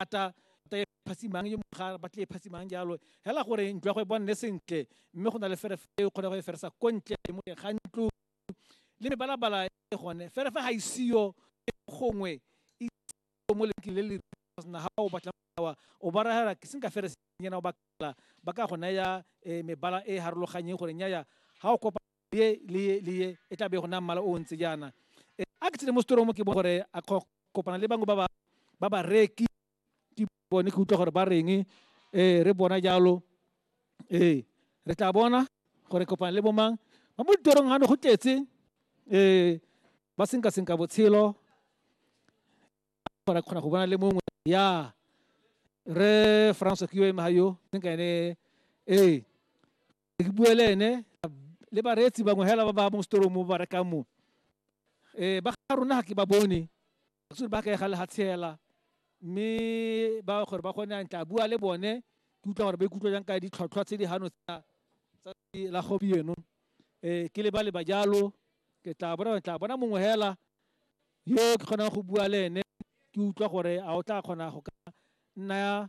rata rata e phasimang yo mongwe ga batle e phasimang jalo hela gore ntlo ya go e bonne sentle mme go na le ferefe e kgone go e feresa ko ntle mo teng ga ntlo le mebalabala e gone ferefe ga isiyo e gongwe e mo lenkeng le le na ga o batla wa o ba raya ke seng ka ferese nyena o bakala ba ka go naya eh, mebala e harologanyeng gore nyaya ga o kopa ye le ye le ye e tla be go na mmala o ntse jaana e, a ke tsene mo setorong mo ke bone gore a kopana le bangwe ba ba ba ba reki ke bone ke utlwa gore ba reng um re bona jalo ee re tla bona gore kopana le bomang ba mo ditorong gano go tletse um ba senka senka botshelo gore kgona go bona le mongwe ya re francois ke yo ema ga yo senka ene ee ke bue le ene le bareetsi bangwe hela ba ba mo setorong mo ba rekang mo um ba ga rona ga ke ba bone actually ba ka ega le ga tshela mme ba gore ba kgone a ntla bua le bone ke utlwa gore ba ikutlwa jang ka ditlhotlhwa tse di gano tsa la gompieno um ke le ba le ba jalo ke tla bona tla bona mongwe hela yo ke kgonang go bua le ene ke utlwa gore a o tla kgona go ka nna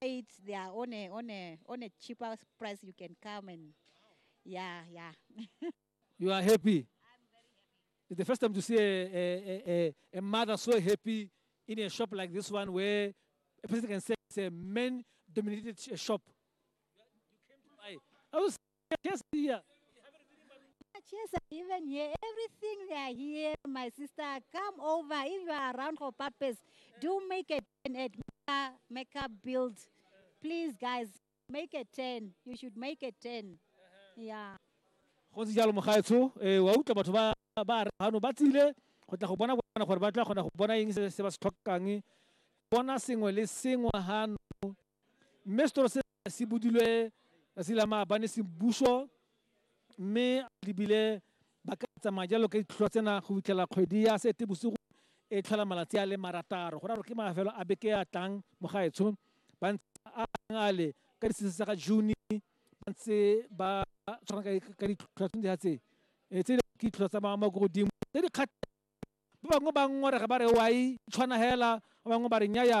it's they are on a on a on a cheaper price you can come and yeah yeah you are happy it's the first time to see a, a, a, a mother so happy in a shop like this one where a person can say it's a men dominated shop you came to buy i was just here. Chesa, even here, everything they are here, my sister. Come over if you are around for purpose. Do make a turn at Mecca, Mecca Build. Please, guys, make a turn. You should make a turn. Yeah. go ntse jalo mogaetsho eh, wa utlwa batho ba ba re gano ba tsile go tla go bona bona gore ba tla kgona go bona eng se se ba se tlhokang bona sengwe le sengwe gano mme setoro se se budilwe tsatsi la maabane se buso mme lebile ba ka tsamaya jalo ka ditlhotlhwa tsena go fitlhela kgwedi ya seetebosigo e tlhola malatsi a le marataro go raro ke mafelo a beke a tlang mo gaetsho ba ntse a ale ka disese tsa ga june ba ntse ba tshwana ka ditlhotlhwa tse dintsi tse e tse ke ditlhotlhwa tsa maamo ko godimo tse di kgatlha ba bangwe ba ngorega ba re wa e tshwana hela ba bangwe ba re nyaya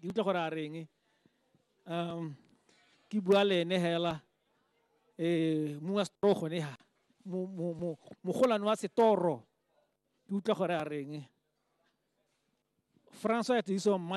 ke utlwa gore a reng um ke bua le ene hela um mong wa setoro gone ha mogolwane wa setoro ke utlwa gore a reng francois ya tediso mmane